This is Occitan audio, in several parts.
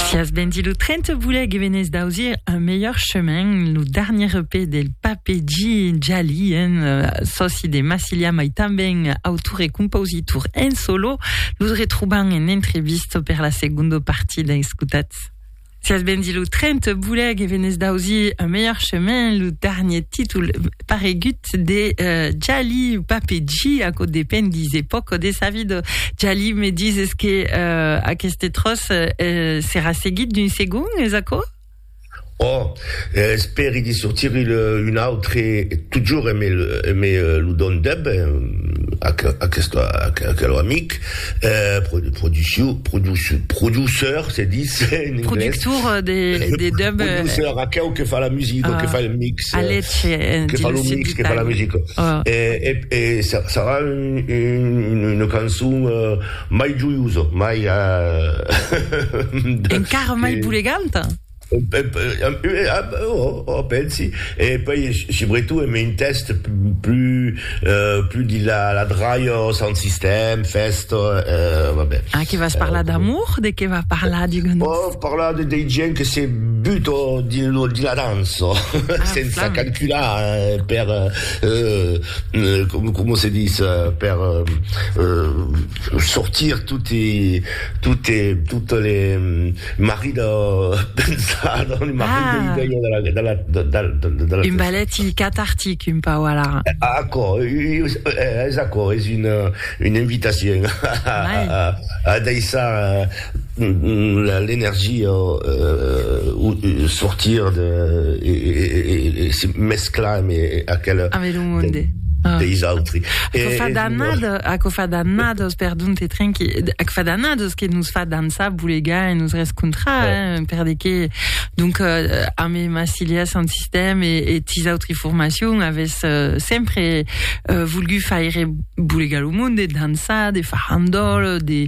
Si as bendit lo tren, te voulè que venés d'ausir un melhor chemin, lo darnier EP del Pape G. Djali, un euh, soci de Massilia, mai tanben autor e compositor en solo. Los retrobam en entrevista per la segunda partida. Escutatz. Si as bendit lo tren, te voulè que venés d'ausir un melhor chemin, lo darnier títol paregut de Jali ou Papeji, aquò depend des epòques de sa vida. Jali me dises que euh, aqueste tròç euh, serà seguit d'un segon, es aquò? Oh, eh, espèri de sortir un autre, totjorn me, me lo dondeb, aquel, aquel, aquel amic, Euh, produ, produciu, produciu, produceur, se dis en anglais. Productor de, de dub. Euh, produceur, aqueu que fa la musica, uh, que fa le mix. A leche, euh, Que fa le mix, que fa la musica. Uh. E, e, e sarà un, un, una cançon uh, mai joiosa, mai... Uh, Encara mai buleganta? Ò, pensi, e puèi subretot en un tèxt plus de la dralha, sound system, fèsta, va ben. Ah, que vas parlar d'amour? De qué va parlar, digues-nos? Vò parlar de dei gents que se buta dins la dança, sensa calcular per, coma se ditz, per... sortir toti tote totes les marri de pensar dans les marri ah. de l'idea de la, de la, de, de, de, de la un ballet cathartic un pau alara aquò és aquò és una, une invitacion a, a, a, a deixar l'energia sortir de e se mesclar amb aquela deis autri aquò fa d'annadas aquò fa d'annadas perdon te trinqui aquò fa d'annadas que nos fa dansar bolegar e nos rescontrar per de que donc amé Massilia Sound System e tis autri formacion avètz sempre volgut faire bolegar lo monde dansar de farandòl de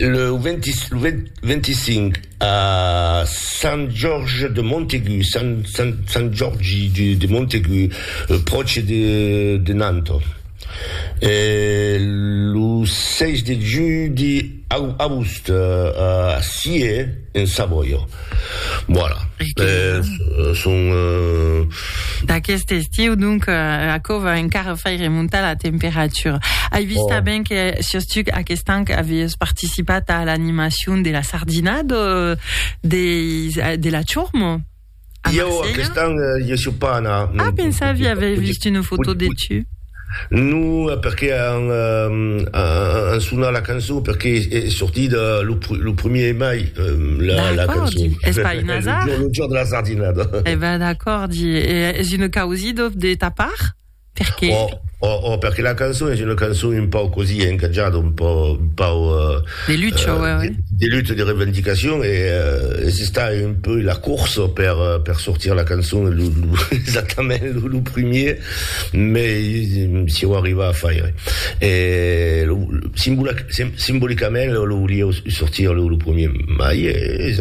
Lo 25 a Sant Jorge de Montaigu, Sant Jorgi de Montaigu, pròche de Nantes. E lo 6 de julhi a Aoust, a Scié, en Savòia. Voilà. Euh, son... Euh... D'aquest estiu, donc, euh, aquò va encara faire remontar la temperatura. Ai vist oh. ben que sus tu aquest an avies participat a l'animacion de la sardina de, de, de la Churmo. Jo, aquest an, eh, jo suis pas anat. Ah, pensava, j'avais vist une foto de tu. No, perqué an an sonat la cançon, perqué es sortit lo primier de mai, la cançon. D'acòrdi, es pas un azar. Lo jorn de la sardinada. E ben, d'acòrdi. E es una causido de ta part? Perqué? Oh, oh, oh, perqué la cançon es una cançon un pauc così encatjada, un pauc... De lutte, oi, oi. De lutte, de revendicacion, e es estat un peu la corsa per sortir la cançon exactament lo primier. Mei si o arriva a faire. E lo simbolicament lo lo volieu sortir lo lo premier mai e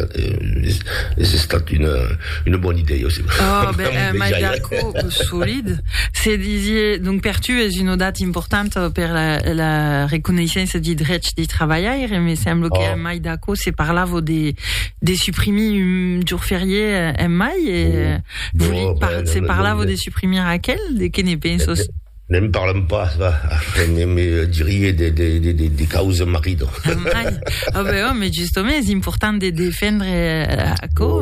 es estat una una bona idèia aussi. Oh ben un mai d'acò solid. Se disie donc per tu es una data importanta per la la reconeissença de drechs de trabalhaire me sembla que un mai d'acò se parlava de de suprimir un jorn ferié en mai e Se parlavo de suprimir aquel, de que ne pensos? Ne'n parlam pas, va, ne me dirie de, de, de, de, de causa marido. Mai, oh, ben, oh, mais justement, és important de defendre aquò.